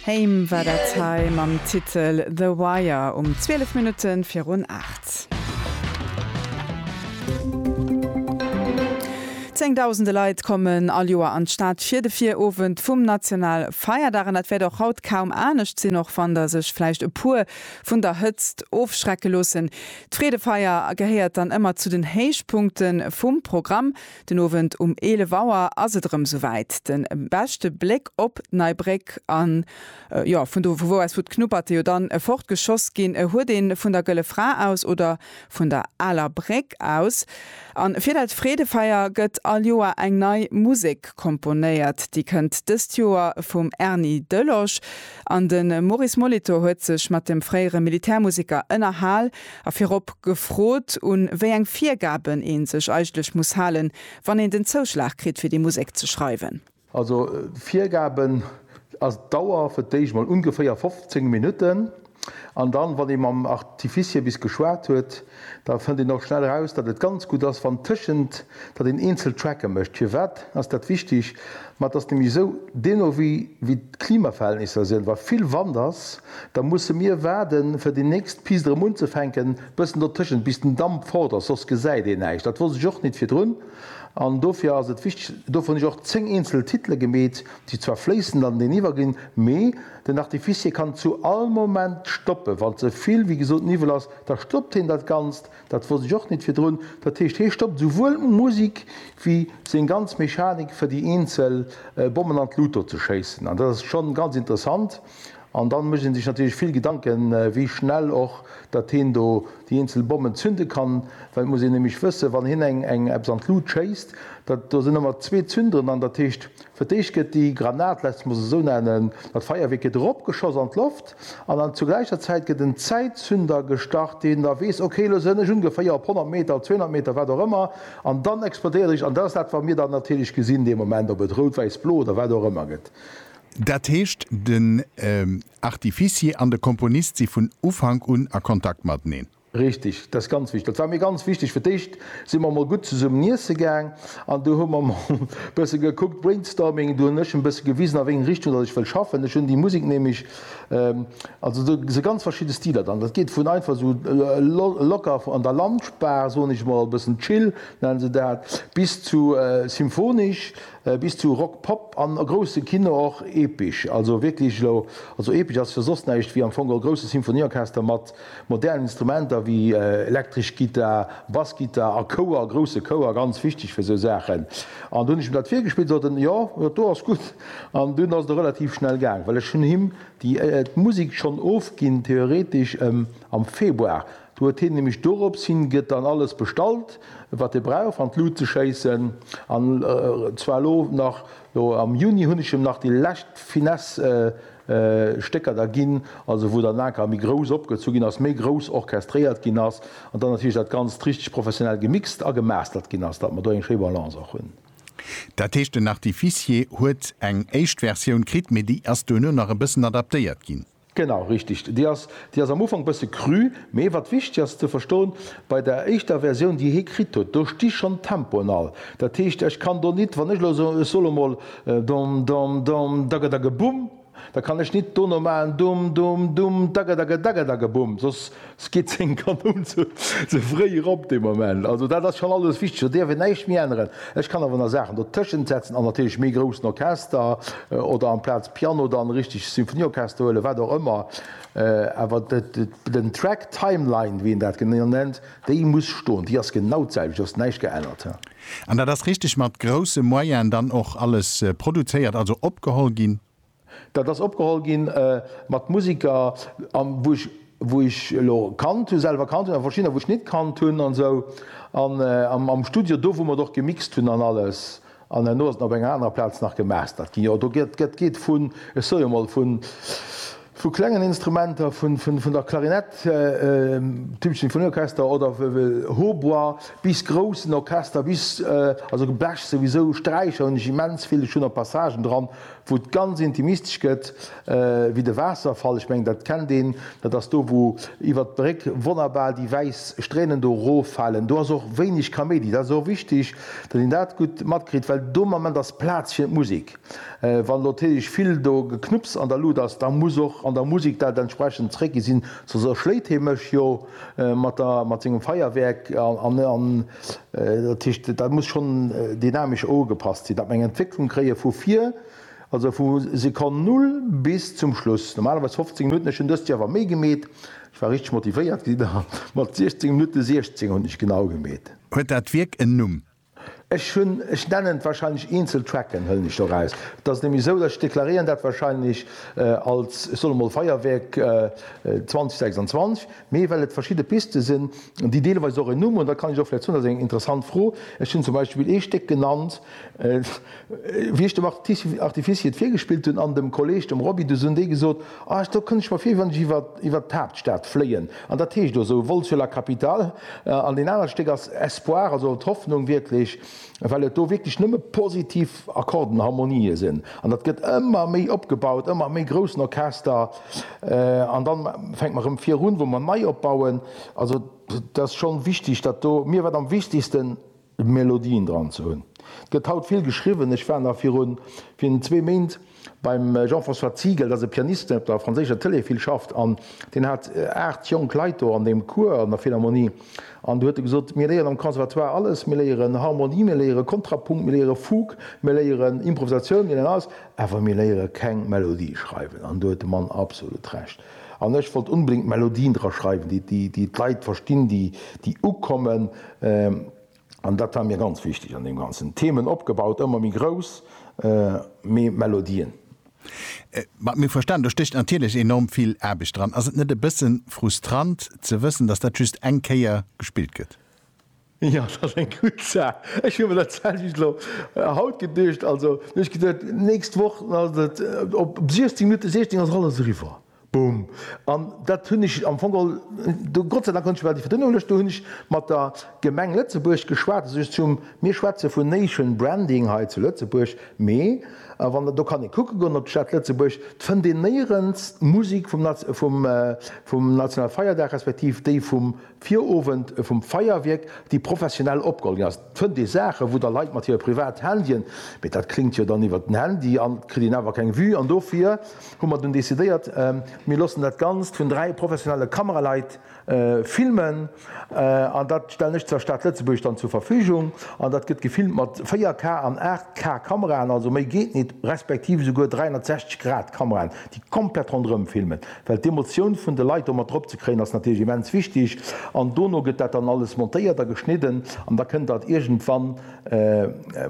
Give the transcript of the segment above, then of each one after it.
Haim war dat hei mam Titel The Wire um 12 Minutte virun 8. Zéngdausende Leit kommen all Joer an d'Stad fir de Virowend vum Nationalfeierdag. An dat wäert och haut kaum anescht sinn, och wann der sech vläicht e puer vun der Hëtzt ofschrecke loossen. D'Freedefeier gehéiert dann ëmmer zu den Héichpunkte vum Programm. Den Owend um 11 Auer ass et erëm souwäit. De beschte Bléck op d'Nei Bréck an jo, vun do vu wou aus wou d'Knupperte jo dann fort geschoss ginn, huet een vun der Gëlle Fra aus oder vun der Aler Bréck aus. An fir dat Freedefeier gëtt all Joer eng nei Musek komponéiert. Déi kënnt dëst Joer vum Erny Delosch. An de Maurice Molitor huet sech mat dem fréiere Militärmuseker ënnerhal. A virop gefrot, un wéi eng Virgaben ee sech eigentlech muss halen, wann een den Zouschlag kritt, fir déi Musek ze schreiwen. Also d'Virgaben ass d'Dauer, fir d'éischt emol ungeféier 15 Minutten. An dann, wann ee mam Artificier bis geschwat huet, da fënnt een och schnell eraus, datt et ganz gutt ass, wann tëschent, datt een eenzel Tracke mécht. Firwat ass dat wichteg? Ma et ass nämlech esou, deeno wéi d'Klimaverhältnisser sinn, wa vill Wand ass, Da musse mir waarden, fir déi nächst Pist erëm unzefänken. Bëssen dertëschent, bis den Damp fort ass, soss gesäit een näischt. Dat wosst ech och nit virdrun. An dofir ass et wichteg, dovun hunn ech och zéng eenzel Titele gemeet, déi zwar fléissend aneniwwer ginn, mee den Artificier kann zu all Moment stoppen. Wann ze vill, wéi gesot, Niwwel ass, da stoppt heen dat Ganzt. Dat wosst ech och nit virdrun. Dat heescht, hee stoppt esouwuel d'Musik wéi seng ganz Mechanik, fir déi eenzel Bommen an d'Luucht do ze schéissen. An dat ass schonn ganz interessant. An dann mécht een sech natierlech vill Gedanken, wéi schnell och dat heen do déi eenzel Bommen zünde kann, well et muss een nämlech wëssen, wann heen eng eng eppes an d'Lut schéisst, dat do sinn ëmmer zwee Zünderen an, dat heescht, fir d'éischt gëtt déi Granat, laasst mech se esou nennen, dat Feierwierk gëtt eropgeschoss an d'Loft an dann zur gläicher Zäit gëtt en Zäitzünder gestart, deen da weess, okay, elo sënn ech ungeféier op 100 Meter, op 200 Meter, wat och ëmmer, an dann explodéiert ech. An dat ass dat, wat mir dann natierlech gesinn dee Moment, ob et rout, wäiss, blo oder wat och ëmmer gëtt. Dat heescht, den Artificier an de Komponist si vun Ufank un a Kontakt mateneen? Richteg, dat ass ganz wichteg. Dat war mir ganz wichteg. Fir d'éischt si mer emol gutt zesummen iesse gaang an du hu mer emol e bësse gekuckt, brainstorming, du hunn ech e bësse gewisen, a wéi eng Richtung datt ech wëll schaffen. Ech hunn déi Musek nämlech, also do si ganz verschidde Stiler dran. Dat geet vun einfach esou locker an der Lunchbar, soen ech emol, e bëssen chill nennen se dat, bis zu symphonesch bis zu Rock Pop an a grousse Kino och epesch, also wierklech elo, also epesch ass jo soss näischt wéi am Fong e grousse Symphonieorchester mat modernen Instrumenter wéi elektresch Gittar, Bassgittar a Chouer, grousse Chouer, ganz wichteg fir esou Saachen. An do hunn ech him dat virgespillt, sot en, jo, dat do ass gutt. An dunn ass et och relativ schnell gaang, well ech hunn him déi d'Musek schonn ofginn, theoretesch, am Februar Do huet hien nämlech dorops hin gëtt dann alles bestallt wat e brauch an d'Lut ze schéissen an zwar elo nach elo am Juni hunn ech em nach déi lescht Finesse Stécker da ginn, also wou dann anker méi grouss opgezu ginn ass, méi grouss orchestréiert ginn ass an dann natierlech dat Ganzt richteg professionell gemixt a gemastert ginn ass, datt mer do eng schéi Balance och hunn. Dat heescht den Artificier huet eng éischt Versioun kritt, mee déi ass duerno nach e bëssen adaptéiert ginn? Genau, richteg. Déi ass, déi ass am Ufank bësse cru, mee wat wichteg ass ze verstoen, bei der éischter Versioun, déi hie kritt huet, do sti schonn d'Tempoen all. Dat heescht, ech kann do nit, wann ech elo soen, ech soll emol dom, dom, dom, dagedageboum, da kann ech nit dono maachen, dum, dum, dum, dagedagedagedageboum, soss. Ski 10 Kanoun ze fréi erop dee Moment. Also dat ass schonn alles wichteg, do dierf een näischt méi änneren. Ech kann awer nach Saachen dotëschent setzen an natierlech méi groussen Orchester oder amplaz Piano dann e richtegt Symphonieorchester huelen, wat och ëmmer. Awer den Track Timeline, wéi een dat genannt nennt, déi muss stoen, déi ass genau d'selwecht, do ass näischt geännert. An dat ass richteg mat grousse Moyene dann och alles produzéiert, also opgeholl ginn? Dat ass opgeholl gi mat Musiker a wou ech, wou ech elo kannt hu, selwer kannt hunn, a verschiddener wou ech nit kannt hunn an esou. An am Studio, do wou mer et och gemixt hunn an alles, an herno ass et nach op enger anerer Plaz nach gemastert ginn. Jo, do gëtt, dat geet vun, ech soe jo mol, vun, vu klengen Instrumenter, vun, vun, vun der Klarinett, Tübingen Sinfonieorchester, oder Hautbois, bis groussen Orchester, bis, also Blech souwisou, Sträicher hunn ech immens vill, ech hunn och Passagen dran wou et ganz intimistesch gëtt, wéi de Waasserfall, ech mengen dat kennt een, dat ass do wou iwwert d'Bréck wonnerbar déi wäiss Stränen do roffalen, do ass och wéineg Kaméidi, dat ass och wichteg, datt een dat gutt matkritt, well do am Ament ass Plaz fir d'Musek. Wann elo natierlech vill do Geknupps an der Luut ass, da muss och an der Musek dat entsprechend zréckginn sinn, soss erschléit hie mech jo mat sengem Feierwerk. Dat heescht, dat muss schonn dynamesch ugepasst sinn, datt mer eng Entwécklung kréie vu vir, also vu Sekonn Null bis zum Schluss, normalerweis 15 Minutten. Ech hunn dëst Joer awer méi gemeet, ech war richteg motivéiert déi Dag mat 16 Minutte 16 hunn ech genau gemeet. Huet dat Wierk en Numm? Ech hunn, ech nennen et wahrscheinlech eenzel Tracken, hëllen ech do raus. Et ass nämlech esou, datt ech deklaréieren dat wahrscheinlech als, ech soe mol, Feierwierk 2026. Mee well et verschidde Piste sinn, déi deelweis och en Numm hunn, da kann ech och vläicht soen, dat ass eng interessant Fro, ech hunn zum Beispill ee Stéck genannt, wéi ech dem Artificier et virgespillt hunn an dem Kolleeg, dem Roby, du hunn déi gesot, ah, do kënnt ech mer vir, wéi wann ech iwwert d'Haaptstad fléien. An dat heescht och esou, Vol sur la capitale. An deen anert Stéck ass Espoir, also d'Hoffnung wierklech. well et do wierklech nëmme positiv Akkorden, Harmonië sinn an dat gëtt ëmmer méi opgebaut, ëmmer méi groussen Orchester an da fänkt mer erëm virun, wou mer nei opbauen. Also et ass schonn wichteg, datt do, mir war et am wichtegsten, Melodien dran ze hunn. Et gëtt haut vill geschriwwen, ech war nach virun zwee Méint, Beim Jean-François Ziegel, dat ass e Pianist, deen op der franséischer Tëlee vill schafft, an deen hat 8 jonk Leit do an deem Cours an der Philharmonie. An do huet e gesot, mir léieren am Conservatoire alles, mir léieren Harmonie, mir léiere Kontrapunkt, mir léiere Fugue, mir léieren Improvisatioun, mir léieren alles, awer mir léiere keng Melodie schreiwen. An do huet de Mann absolut Recht. An ech wollt onbedéngt Melodien dra schreiwen, déi d'Leit verstinn, déi ukommen. an dat war mir ganz wichteg an deem Ganzen, Themen opgebaut, ëmmer méi grouss, mee Melodien. Mat mir verstanen, do stécht natierlech enorm vill Aarbecht dran. Ass et net e bësse frustrant ze wëssen, datt dat just eng Kéier gespillt gëtt? Jo, dat ass eng gutt Saach. Ech hu mir dat selwecht elo haut geduecht. Also ech hu geduecht, d'nächst Woch ass et op 16 Minutten, 16 ass et alles eriwwer. Boom. An dat hunn ech am Fong all do, Gott sei Dank konnt ech iwwer déi Verdënnung luechten, do hunn ech mat der Gemeng Lëtzebuerg geschwat, also just zum, mir schwätze vun Nation Branding hei zu Lëtzebuerg, mee wann Der, do kann ee kucke goen op d'Stad Lëtzebuerg, d'fënnt een néierens d'Musek vum, vum, vum Nationalfeierdag respektiv déi vum Virowend vum Feierwierk, déi professionell opgeholl ginn ass, fënnt ee Saachen, wou da Leit mat hire privat Handyen, mee dat kléngt jo dann iwwer den Handy an et kritt een awer keng Vue. An dofir hu mer dunn decidéiert, mir loossen dat Ganzt vun dräi professionelle Kameraleit filmen an dat stellen ech der Stad Lëtzebuerg dann zur Verfügung. An dat gëtt gefilmt mat 4K an 8K Kameraen, also méi geet nit, respektiv esouguer 360 Grad Kameraen, déi komplett ronderëm filmen. Well d'Emotioun vun de Leit do mat drop ze kréien ass natierlech immens wichteg. An dono gëtt dat dann alles montéiert a geschnidden an da kënnt dat iergendwann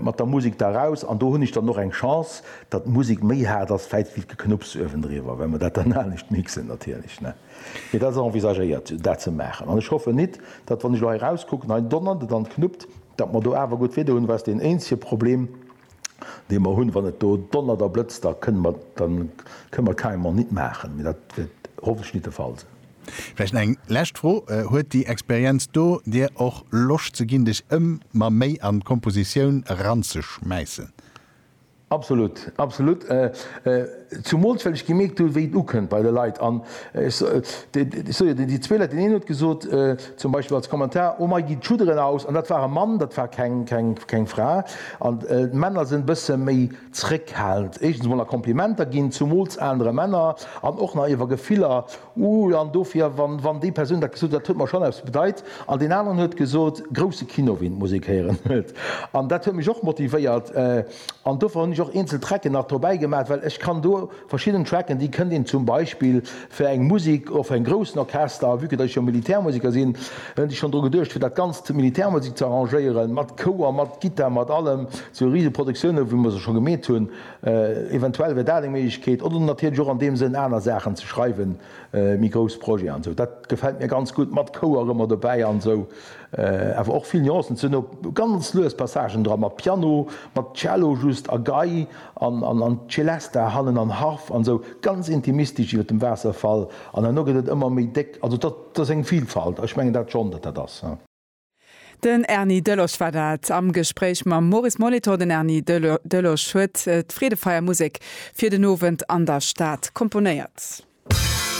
mat der Musek da raus. An do hunn ech dann och eng Chance, datt d'Musek méi haart ass vläit wéi d'Geknupps uewendriwwer, well mer dat dann anescht mixen natierlech, ne? Mee dat ass envisagéiert, dat ze maachen. An ech hoffen nit, datt wann ech elo hei rauskucken, hei donnert et an et knuppt, datt mer do awer gutt Wieder hunn, well ass deen eenzege Problem, dee mer hunn, wann et do donnert a blëtzt, da kënne mer, da kënne mer carrément nit maachen. Mee dat wäert hoffentlech nit de Fall sinn. Vläicht eng lescht Fro, Huet déi Experienz do dir och Loscht ze ginn, dech ëmmer méi an d'Kompositioun eranzeschmäissen? Absolut, absolut. Zumools well ech gemierkt hu wéi et ukënnt bei de Leit. An ech soe jo, déi zwee Leit, deen een huet gesot, Zum Beispill als Kommentar, Oh mei gin d'Schudderen aus an dat war e Mann, dat war keng Fra. An d'Männer sen bësse méi zréckhalend éischtens mol a Komplimenter gin, zumols aanere Männer, an och nach iwer Gefiller, Uh an dofir wann déi Persoun dat gesot huet, dat huet mer schon eppes bedeit. An deen aneren huet gesot, Grousse Kino ween d'Musek héieren huet. An dat huet mech och motivéiert an dofir hun ech och eenzel Trecken nach dobäi gemaat, well ech kann do, Verschidden Tracken, déi kënnt een zum Beispill fir eng Musik och fir en groussen Orchester, vue que datt ech jo Militärmusiker sinn, hunn ech schonn dru geduecht fir dat Ganzt, Militärmusik, ze arrangéieren, mat Chouer, mat Gittar, mat allem, sou rise Produktioune wéi mer se scho gemeet hunn. Eventuell wär dat eng Méiglechkeet oder natierlech och an deem Sënn aner Saachen ze schreiwen, méi grouss Projeten an sou. Dat gefält mir ganz gutt, mat Chouer ëmmer dobäi an sou, awer och vill Nuancen ze hunn, ganz lues Passagen dra mat Piano, mat Cello just a Gei. an Celesta hannen an Harf an esou ganz intimistesch iwwert dem Waasserfall an herno gëtt et ëmmer méi déck. Also dat ass eng Vilfalt. Ech mengen dat schonn, datt dat ass. Den Erny Delosch war dat am Gespréich mam Maurice Molitor. Den Erny Delosch huet d'Freedefeier Musek fir den Owend an der Stad komponéiert.